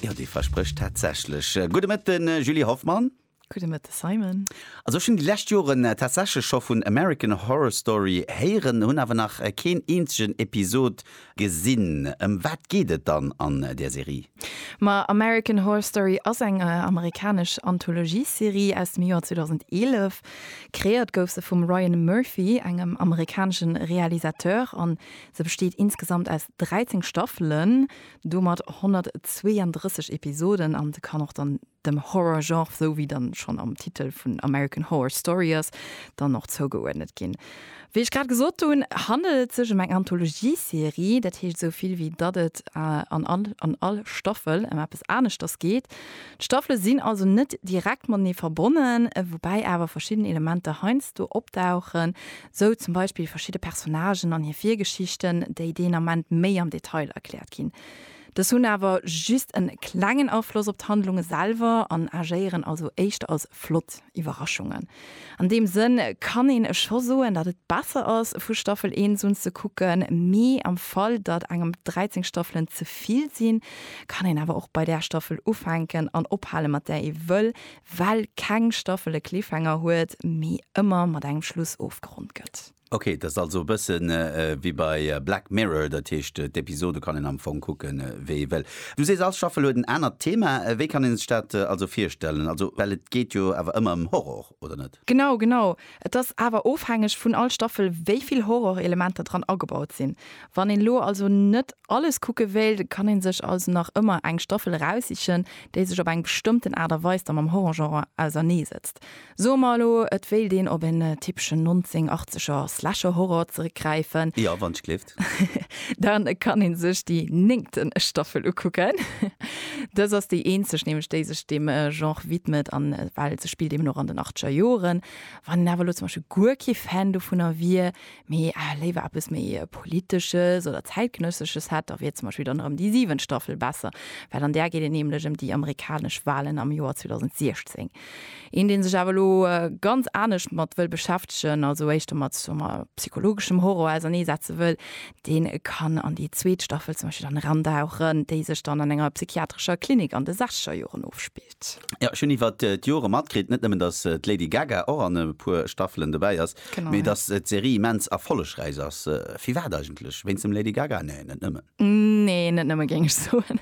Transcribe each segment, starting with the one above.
Jo, dee versprécht tatsächlech. Gudde Mëtten, Julie Hoffmann. Gudde Mëtte, Simon. Also ech hunn déi lescht Joren tatsächlech scho vun American Horror Story héieren, hunn awer nach keen eenzegen Episod gesinn. Ëm wat geet et dann an där Serie? Ma American Horror Story ass eng amerikanesch Anthologiesserie aus dem Joer 2011. Kreéiert gouf se vum Ryan Murphy, engem amerikanesche Realisateur, an Se besteet insgesamt aus 13 Staffelen, domat 132 Episoden an se kann och dann dem Horror-Genre, sou wéi dann schonn am Titel vun American Horror Story ass, dann och zougeuerdnet ginn. Wéi ech grad gesot hunn, handelt et sech em eng Anthologie-Serie, dat heescht sou vill wéi datt et an all an all Staffel em eppes aneschters geet. D'Staffele sinn also net direkt matenee verbonnen, woubäi awer verschidden Elementer heiansdo opdauchen, Sou zum Beispill verschidde Personnagen an hir Virgeschichten, déi deen Ament méi am Detail erkläert ginn. Dës hunn awer just en klengen Afloss op d'Handlunge selwer an agéieren also éischter als flott Iwwerraschungen. An deem Sënn kann een scho soen, datt et besser ass, vu Staffel 1 un ze kucken, mee am Fall, datt engem 13 Staffelen ze vill sinn, kann een awer och bei där Staffel ufänken an ophale mat där ee wëll, well keng Staffel e Cliffhanger huet, mee ëmmer mat engem Schluss ofgeronnt gëtt. Ok, dat ass also e bësse wéi bei Black Mirror, dat heescht d'Episode kann een am Fong kucke wéi ee wëll. Du sees all Staffel huet en anert Thema, wéi kann een sech dat also virstellen? Also well et geet jo awer ëmmer ëm Horror, oder net? Genau, genau. Et ass awer ofhängeg vun all Staffel wéi vill Horrorelementer dran agebaut sinn. Wann een elo also net alles kucke wéilt, kann een sech also nach ëmmer eng Staffel eraussichen, déi sech op eng bestëmmten Aart a Weis da mam Horrorgenre ausernee setzt. Soe mer elo, et wéilt een op en typeschen 1980er Slasher-Horror zeréckgräifen. Jo, wann ech gleef. Dann kann een sech déi néngte Staffel ukucken. Dës ass déi eenzeg nämlech, déi sech deem Genre widmet an well se spillt eben och an den achteger Joren. Wann een awer elo zum Beispill guer kee Fan dovunner wier, mee léiwer eppes méi Politesches oder Zäitgenëssesches hätt, da wier zum Beispill dann erëm déi siwent Staffel besser, well an där geet et nämlech ëm déi amerikanesch Walen am Joer 2016. Een deen sech awer elo ganz anescht mat wëll beschäftegen, also éischter mat soe mer psychologeschem Horror ausernee setze wëll, deen kann an déi zweet Staffel zum Beispill dann erandauchen, déi sech dann an enger psychiatrescher Klinik an de sechzeger Joren ofspillt. Jo, ech hunn iwwert d'Jore matkritt, net nëmmen datt d'Lady Gaga och an e puer Staffelen dobäi ass, mee datt d'Serie immens erfollegräich ass. Firwat eigentlech? Wéinst dem Lady Gaga? Nee, net nëmmen. Nee, net nëmme géing ech soen.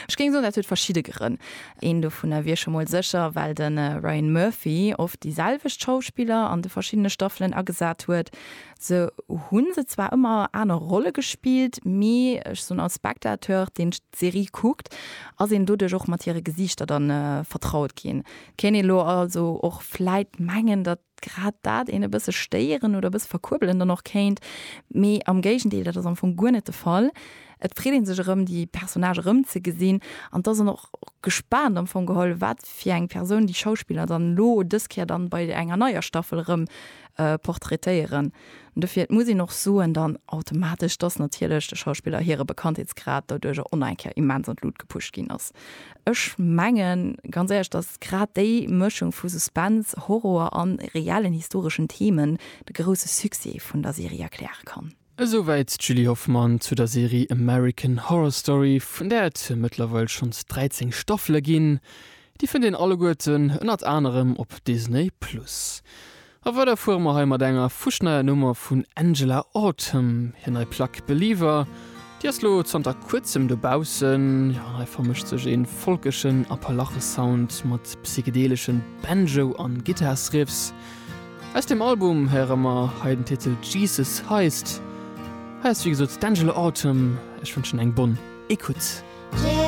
Ech géing soen, dat huet verschidde Grënn. Een dovunner wier scho mol sécher, well de Ryan Murphy oft déi selwecht Schauspiller an de verschiddene Staffelen agesat huet. Se hu se zwar ëmmer aner Rolle gespillt, mee ech soen, als Spectateur, deen d'Serie kuckt, ass een doduerch och mat hire Gesiichter dann vertraut ginn. Kéint ee lo also och vläit mengen, datt grad dat een e bësse stéieren oder e bësse verkuerbelen dann och kéint, mee am Géigendeel, dat ass am Fong guer net de Fall. Et freet ee sech erëm, déi Personnage erëmzegesinn an et ass een och gespaant am Fong geholl, wat fir eng Persoun déi Schauspiller dann elo dës Kéier dann bei enger neier Staffel erëm portraitéieren. Dofir, et muss een och soen dann automatesch, dass natierlech de Schauspiller hire Bekanntheetsgrad doduerjer on eng Kéier immens an d'Lut gepusht ginn ass. Ech mengen ganz éierlech, dass grad déi Mëschung vu Suspense, Horror an reellen historeschen Themen de grousse Succès vun der Serie erkläre kann. Esouwäit d'Julie Hoffmann zu der Serie American Horror Story, vun där et mëttlerweil schonns 13 Staffele ginn. Déi fënnt een alleguerten ënnert anerem op Disney Plus. A weider fuere mer hei mat enger fuschneier Nummer vun Angela Autumn. Hir nei Plack Believer, déi ass lo zanter kuerzem dobaussen. Jo, hei vermëscht sech ee folkeschen Appalachesound mat psychedeleschen Banjo an Gittarsriffs. Aus deem Album héiere mer hei den Titel Jesus Heist. Hei ass wéi gesot d'Angela Autumn. Ech wënschen eng bonne Écoute.